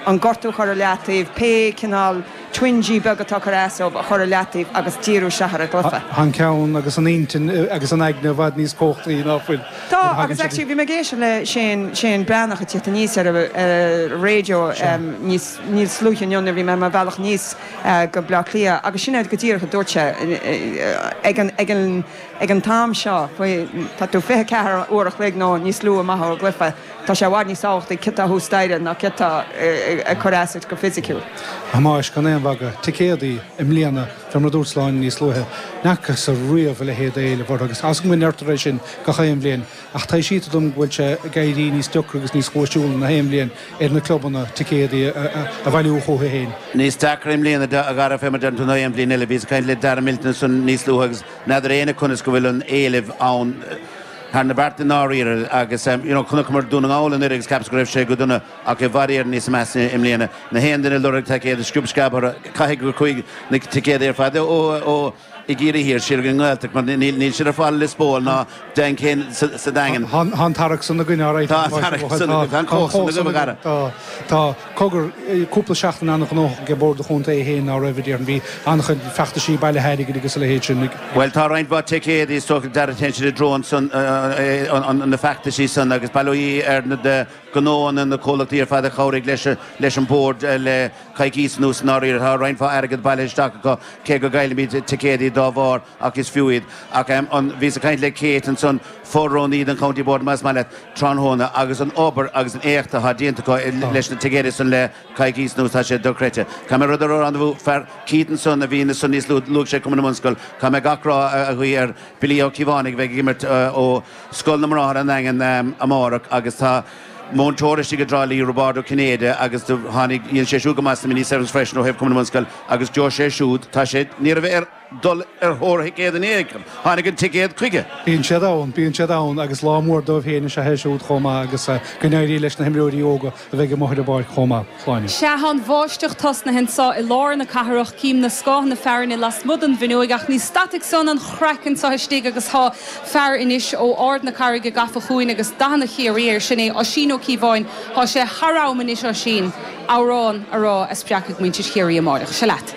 an gortú a chur i leataobh, pé cineál twinge beag atá ag cur as dóibh a chur i leataobh agus díriú siar ar an gcluiche. Tá an ceann agus an intinn agus an aigne i bhfad níos cumhachtaí nach bhfuil? Tá agus actually bhí mé ag éisteacht le Seán, Seán Breathnach ag teacht aníos ar radio níos, níos luaithe inniu nuair bhí mé ar mo bhealach aníos go Bleá Cliath agus sin é go díreach a dúirt sé ag an, ag an, ag an t-am seo, tá tú 24 uair a chloig nó níos lú amach ón gcluiche. Tá sé i bhfad níos tábhachtaí céard atá thuas staighre ná céard atá ag cur as duit go fisiciúil. A Thomáis, gan aon mhagadh, ticéadaí, i mbliana, fé mar a dúirt Sláine níos luaithe, ní fhacasa riamh a leithéid d'éileamh orthu agus tá a fhios agam go ndeirtear é sin gach aon bhliain, ach taibhsítear dom go bhfuil sé ag éirí níos deacra agus níos cúisiúla na haon bhliain ar na clubanna ticéadaí a bhailiú chucu fhéin. Níos deacra i mbliana a Dhara fé mar deirtear ná aon bhliain eile. Bhíos ag caint le Darragh Milton ansan níos luaithe agus n'fheadar éinne conas go bhfuil an éileamh ann. thar na bearta i ndáiríre agus you know chonaiceamar Dún na nGall anuireadh agus cheapas go raibh sé go dona ach i bhfad Éireann níos measa i mbliana. Na haon duine ag lorg ticéad, sciob sceab ortha caithfidh gur chuaigh na ticéadaí ar fad ó ó i gCiarraí Thiar siar go dtí an nGaeltacht mar níl níl siad ar fáil i Lios Póil ná Daingean sa sa Daingean. Tá an tarrac san againn alright. Tá an tarrac san againn. Tá an chomhacht san agaibh a chara. Tá. Tá. Cogar, cúpla seachtain an-ghnóthach ag Bord an Chontae é féin, ná raibh? Déarfainn. Bhí an-chuid feachtaisí bailithe airgid agus a leithéid sin ag. Bhuel, tá roinnt mhaith ticéadaí is dócha dár dtarraingt i dtreo na feachtaisí san agus b'fhéidir na gnónna, na comhlachtaí ar fad a chabhraigh leis an Bord le coicís anuas i ndáiríre. Tá roinnt mhaith airgead bailithe isteach acu cé go gcaillfimid ticéadaí dá bharr. Ach is fiú iad. Ach em, an, bhíos ag caint le Kate ansan, fo-rúnaí an County Board más maith leat, tráthnóna, agus an obair agus an éacht atá déanta acu i, leis na ticéadaí san le coicís anuas, tá sé dochreidte. Caithfidh mé a rá ar ár anbhú, fear, Keaton san a bhí ansan níos luaithe, luaigh sé Cumann na mBunscol, caithfidh mé gach rath a, a ghuí ar Billy Ó Ciobhánaigh a bheidh ag imirt eh, ó Scoil na mBráthar an Daingin em, amárach agus tá múinteoir istigh i dTrá Lí, Roibeárd Ó Cinnéide agus do, tháinig, dhéan sé siúd go maith sna mini-sevens freisin ó thaobh Cumann na mBunscol agus Joe sé siúd, tá sé, ní raibh ar. dul ar thóir thicéad in aon chor. Tháinig an ticéad chuige. Bíonn siad ann, bíonn siad ann agus lá mór dóibh féin is ea é siúd chomh maith agus go n-éirí leis na himreoirí óga a bheidh amuigh ar an bpáirc chomh maith. Shláine. Sea, tá an bháisteach tosnaithe anseo i lár na cathrach, cím na scáthanna fearthainne lasmuigh den bhfuinneoig ach ní stadfaidh san an craic anseo istigh agus tá fear anois ó Ard na Caithne gafa chugainn agus dathanna Chiarraí air, sin é Oisín Ó Ciobháin. Tá sé thar am anois, Oisín. amhrán a rá a spreagfaidh muintir Chiarraí amáireach. Seo leat.